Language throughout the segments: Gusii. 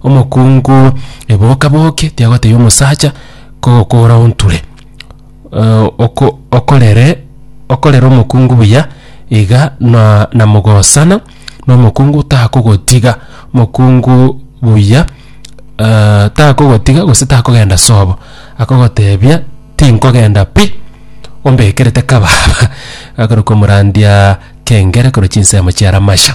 Omokungu eboka-boke tiagoteebia omosacha kogokora onture. Oko okorere okorere omokungu buya iga na namogosana na omokungu takogotiga, omokungu buya takogotiga gose takogenda sobo, akogoteebia tinkogenda pi, ombekerete kababa. Agakora komorandia kengere korwa chinsemo chia Ramasha.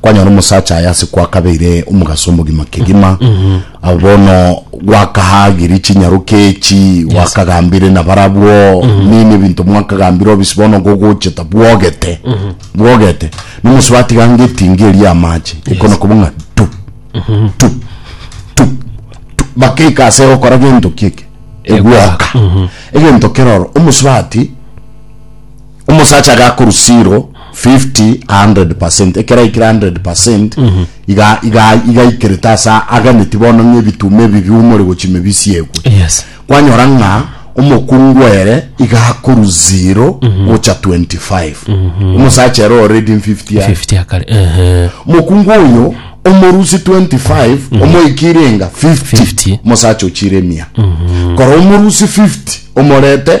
kwanyora omosacha aye ase kwakabeire omogaso omogima kegima abo bono gwakahagiri chinyaroke echi gwakagambire na barabwo nini ebinto mwakagambire obisi bono gogoche tabwogete bwogete nomosi batiga ngetinga eria amache ekona koba ng'a tu tu tu tu bakeika ase gokora gento kieke egwoka egento keroro omosi bati Omosacha iga akorwa zero, fifty, a hundred percent, ekero aikire a hundred percent, iga iga iga aikerete ase aganeti bono ng'a ebituma ebi biumore gochia ime bisiegwe. Yes. Kwanyora ng'a omokungu ere iga akorwa zero gocha twenty five. Omosacha ere o reading fifty are. 50 akare. Ehe. Mokungu oyo omorusi 25 omoikire enga 50, 50. mosacha ochire mia kora omorusi 50 omorete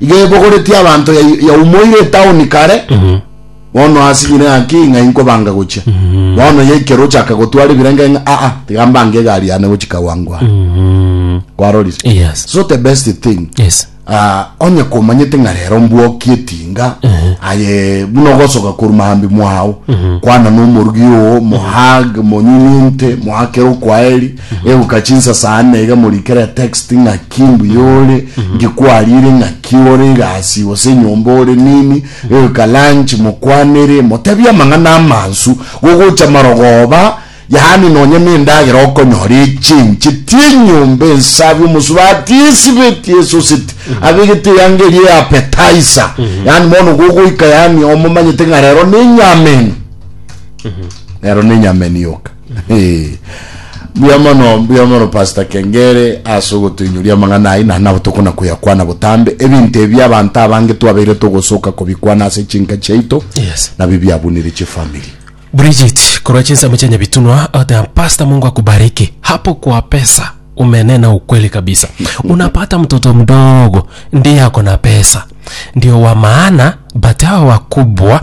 iga ebogoretie abanto ya- yaumoire etaoni kare bono asinyire ng'aki ng'a inkobanga gochia bono ye ekero ochaka gotwara ebirenge ng'a aa tiga mbange egari yane gochia kawangware Mhm. kwarorise Yes. so the best thing Yes. Ah, onye komanyete ng'a rero mbwoki etinga aye buna ogosoka koru mahambi mwao kwana nomorugi oo mohag monyunyunte mohakere okwaeri Eguka chinsasani na iga morikere text ng'aki mbuya ore, ngikwarire ng'aki ore egasi gose enyomba ore nini, eguka lunch mokwanere, motebie amang'ana amansu gogocha marogoba, yaani nonye na endagera okonyora echenche ti enyomba ensabi omosubati esibeti esoseti abegete eyanga eria ya appetizer, yaani bono gogoika yaani omomanyete ng'a rero nenyama eno, rero nenyama eno yoka. Mbuya mono, mbuya mono Pastor Kengere ase ogotoinyoria amang'ana ayio, naende nabo tokona koyakwana botambe. Ebinto ebi abanto abange twabeire togosoka kobikwana ase chinka chiaito, Yes. nabio biabunire chifamiri. Bridget korwa chinsemo chia Nyabitunwa oteba Pastor Mungu akubariki hapo kwa pesa umenena ukweli kabisa unapata mtoto mdogo ndiye ako na pesa ndio wa maana but hawa wakubwa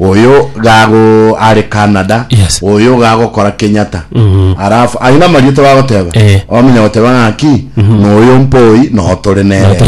Oyo ga go are Canada. Yes. Oyo ga gokora Kenyatta. Alafu aye namarieta bagoteba. Eh. Wamanya goteba ng'aki? Noyo mpoi no tore nere.